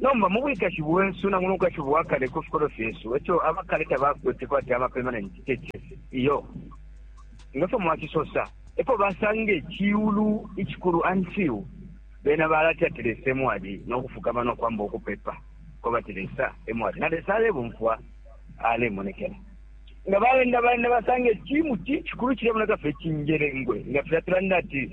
Nomba mu bwikashi bwesu na muno bwikashi bwa kale ku fikolwe fyesu, eco aba kale tabakwete kwati aba permanent churches iyo, nga fyo mwacisosa epo basanga iciulu icikulu until bena balati ati Lesa emwali no kufukama no kwamba ukupepa ko bati Lesa emwali na Lesa alebumfwa alemonekela nga baenda baenda basanga icimu cicikulu cilemoneka fye cinjelengwe nga filya tulanda ati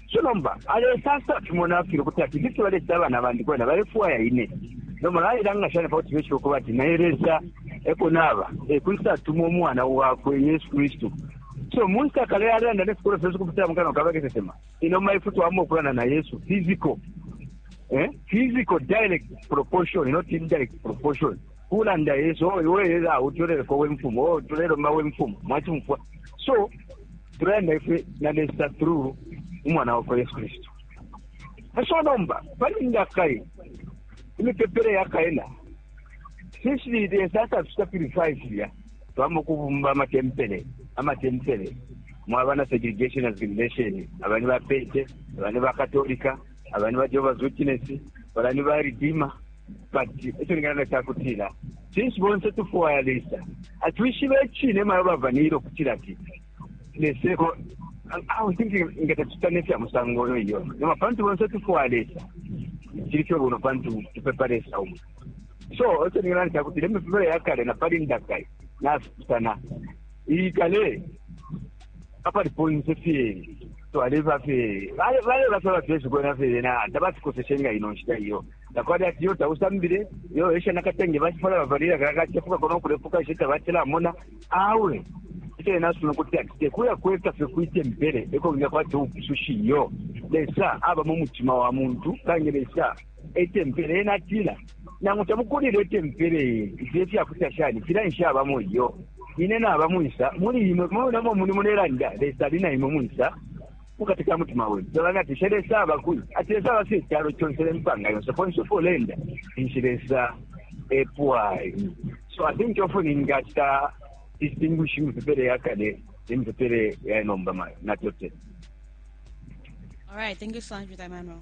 Ico nomba alesansa fimo nafyele ukuti ati ifi fyebalecita abana bandi kwena balefwaya ine. Nomba nalelanga shani pakuti beshibe ukuba ati naine Lesa eko naba? Ekwisa tuma umwana wakwe Yesu Kristu. So munshita kale yalelanda nefikolwe fyesu ukupitila mukanwa ka bakesesema, inomba ifwe twamwa ukulanda na Yesu physical, eh, physical direct proportion, not indirect proportion. kulanda Yesu, oh, iwe ela utuleleko we mfumu, oh, tulelomba we mfumu, mwachumfwa. So, tulenda ife na Lesa through umwana wakwa Yesu Kristo. So nomba, pali ndakai, imipepele ya kaena, sisi Lesa hata tuta purify siya, tuwamo kubumba ama tempele, ama tempele, mwabana segregation as gimnation, abani ba pete, abani ba katolika, aba ni ba Jehovah's Witness bala ni ba Redeemer but ekyo ningana kyakutira since bonse tufuwaya lesa atwishibe ekine mayo bavanira okutira ati leseko awo sinti nga tetutane fya musango oyo iyo noma pantu bonse tufuwaya lesa kiri kyo buno pantu tupepa lesa umu so ekyo ningana nkyakutira emipepere ya kale na pali ndakai nasitana iyi kale apali ponse fyeri twaleba fye baleba fye abafyeshi kwena fye yena tabasikoseshe nga ino nshita iyo takwali ati yo tausambile yo esha nakatenge bacifala bavalira kakacefuka kona ukulefuka ishe tabacilamona awe ico yena asuna ukuti ati tekuya kweka fye kwitempele eko nginga kwati ubupusushi iyo lesa aba mu mutima wa muntu kange lesa etempele ena atila nangu tamukulile etempele ifyo ifyakuta shani fila nshabamo iyo ine naba mwisa muli imwe monamo muni mulelanda lesa ali na imwe mwisa mukati ka mutima wenu tolanga ati she lesa aba kuli ati lesa aba fye calo conse ne mpanga yonse konse uko ulenda inshi lesa epwayi so i think often ingacita distinguish imipepele ya kale nemipepele ya nomba ma- natotela All right, thank you so much for that, Manuel.